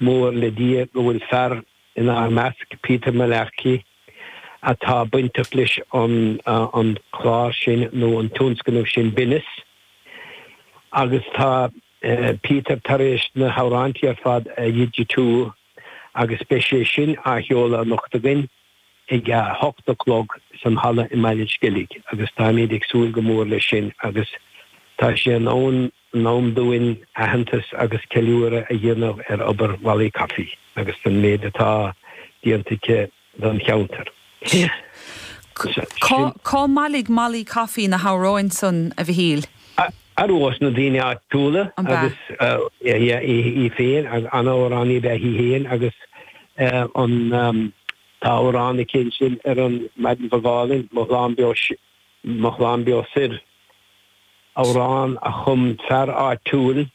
Mór le Dia go bhfuil fear inár measc, Peter Mullarkey, atá bainteach leis an chlár sin nó an tionscnamh sin Binneas. Agus tá Peter tar éis na hamhráintí ar fad a dhigitiú agus beidh sé sin á sheoladh anocht againn ag a hocht a chlog san halla i mBaile an Sceilg agus táimid ag súil go mór leis sin agus tá sé in am in am dúinn aitheantas agus ceiliúradh a dhéanamh ar obair Mhallaí Coffey agus don méid atá déanta aici don cheantar. Sea. Cár bhailigh Mallaí Coffey na hamhráin san, a Mhichíl? Arú ós na daoine áitiúla agus í féin, an-amhránaí ab ea í féin agus tá amhrán aici ansin ar an Maidin Bhog Álainn, Mo Shlán Beo Mo Shlán Beo Soir, amhrán a chum fear áitiúil,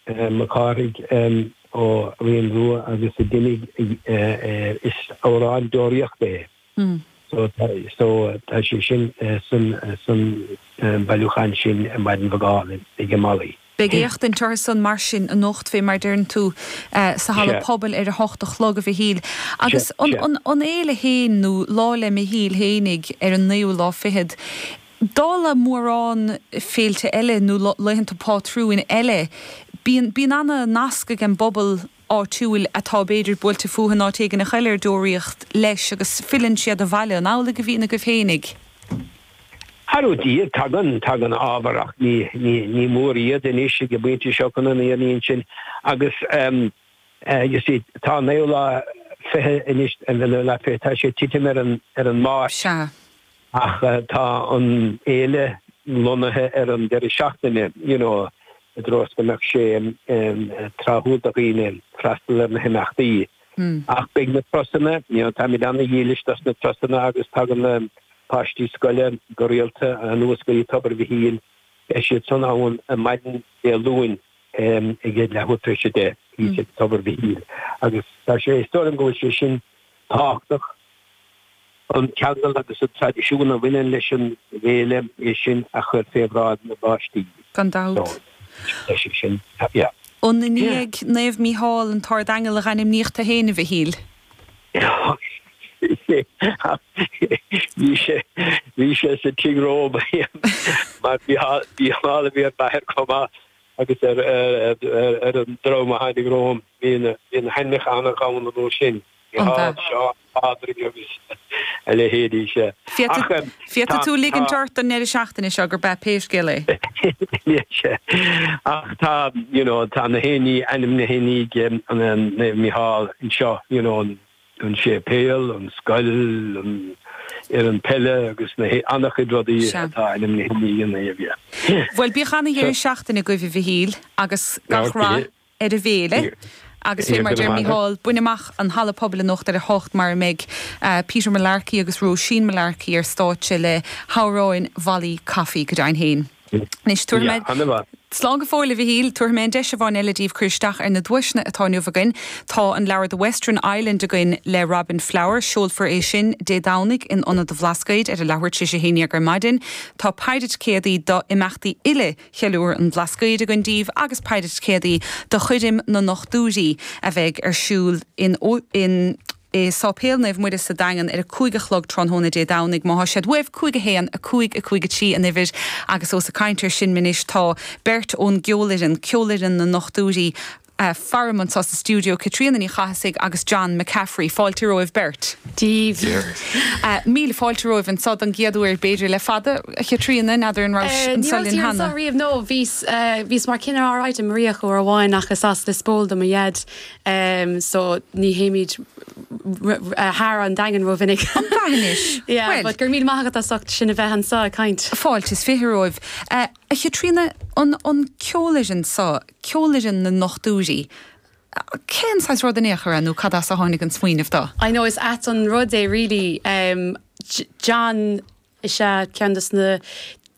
Mac Cárthaigh ó Rinn Rua agus a d'imigh, is amhrán deoraíochta é so so tá sé sin san bailiúchán sin Maidin Bhog Álainn ag Molly. Beidh éachtaint orthu san mar sin anocht fé mar deireann tú sa halla pobail ar a hocht a chlog, a Mhichíl. Agus an fhéile féin nó Lá le Michíl fhéinig ar an naoú lá fichead, dála mórán féilte eile nó laethanta pátrúin eile bíonn ana nasc ag an bpobal áitiúil atá b'fhéidir buailte fúthu in áit éigin a chaill ar deoraíocht leis agus filleann siad abhaile an amhlaidh a bhíonn agaibh féinig. Arú díobh, tagann, tagann ábhar ach ní, ní, ní mór iad anois ag an bpointe seo chun an fhírinne a insint agus ehm, eh, you see, tá naoú lá fiche anois, an bhfuil naoú lá fiche, tá sé titim ar an, ar an Máirt. Sea. ach tá an fhéile lonnaithe ar an deireadh seachtaine you know i dtreo is go mbeadh sé tráthúil do dhaoine freastal ar na himeachtaí ach beidh na turasanna you know táimid an-dhílis dos na turasanna agus tagann na páistí scoile go rialta anuas go dtí Tobar Mhichíl beidh siad san ann maidin Dé Luain ag a leathuair tar éis a deich ag Tobar Mhichíl agus tá sé is dóigh liom go bhfuil sé sin tábhachtach. An ceangal agus an traidisiún a bhaineann leis an bhféile é sin a chur fé bhráid na bpáistí. Gan dabht. Ó an i ndiaidh Naomh Mícheál an tArd-Aingeal a dh'ainmníodh tú fhéin, a Mhichíl. Bhí sé sa tigh romham mar Mícheál a bhí ar m'athair chomh maith agus ar an dream a tháinig romham bhí na hainmneacha ag gabháil an uair sin, Mícheál, Seán, Pádraig agus a leithéidí. Sea. Féadfaidh tú ligint ort don ndeireadh seachtaine seo gurb ea, pé scéal é. Sea. Ach tá, you know, tá gach aon ní ainmnithe i ndiaidh Mícheál anseo, you know. an séipéal, an scoil, an fhoireann peile agus ana-chuid rudaí atá ainmnithe ina dhiaidh. Bhuel, bíodh ana-dheireadh seachtaine agaibh, a Mhichíl, agus gach rath ar an bhféile agus, fé mar a deir Micheál, bain amach an halla pobail anocht ar a hocht mar a mbeidh Peter Mullarkey agus Róisín Mullarkey ar stáitse le hamhráin Mholly Coffey. Go deimhin féin. Anois, tabharfaidh mé, slán go fóill a Mhichíl, tabharfaidh mé an deis amháin eile daoibh cur isteach ar na duaiseanna atá inniu againn. Tá an leabhar The Western Island againn le Robin Flower. Seolfar é sin Dé Domhnaigh in Ionad an Bhlascaoid ar a leathuair tar éis a haon dhéag ar maidin. Tá peidhre ticéadaí d'imeachtaí uile Cheiliúradh an Bhlascaoid againn daoibh agus peidhre ticéadaí do choirm na ndochtúirí a bheidh ar siúl in i Sáipéal Naomh Muire sa Daingean ar a cúig a chlog tráthnóna Dé Domhnaigh. Má thá siad uaibh, 5 1, 5 5 3 an uimhir agus ós ag caint ar sin anois tá beirt ón gceolfhoireann, Ceolfhoireann na nDochtúirí, faram anseo sa stiúideo, Caitríona Ní Chathasaigh agus John McCaffrey. Fáilte romhaibh beirt. Dia ort. Míle fáilte romhaibh anseo don gcéad uair, b'fhéidir, le fada. Chaitríona, n'fheadar an raibh sibh anseo linn cheana? Ní rabhas anseo riamh, no, bhíos, bhíos mar cineál, alright, i Maria uair amháin ach is as Lios Póil do mo dhaid, em so ní théimid thar an Daingean rómhinic. An Daingean anois? Yeah, well, but go raibh míle maith agat as ucht sinn a bheith anseo ag caint. Fáilte is fiche romhaibh. Uh, a Chaitríona, an, an ceolfhoireann so, ceolfhoireann na ndochtúirí, cén saghas rud in aon chor nó cad as a tháinig an smaoineamh do? I know is ait an rud é really, um, John Is ea, ceann de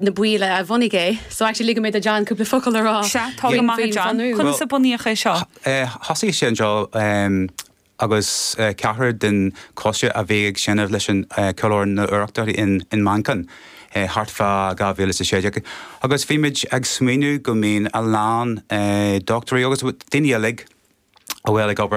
na baill a bhunaigh é. So actually ligfidh mé do John cúpla focal a rá faoin bhunú. Sea, tá go maith, a John. Conas a bunaíodh é seo? Thosaigh sé anseo agus ceathrar den choiste a bhí ag seinm leis an cheolfhoireann na hEorpa in Manchain thart fá 2016 agus bhí muid ag smaoineamh go mbíonn a lán dochtúirí agus daoine uilig a bhfuil ag obair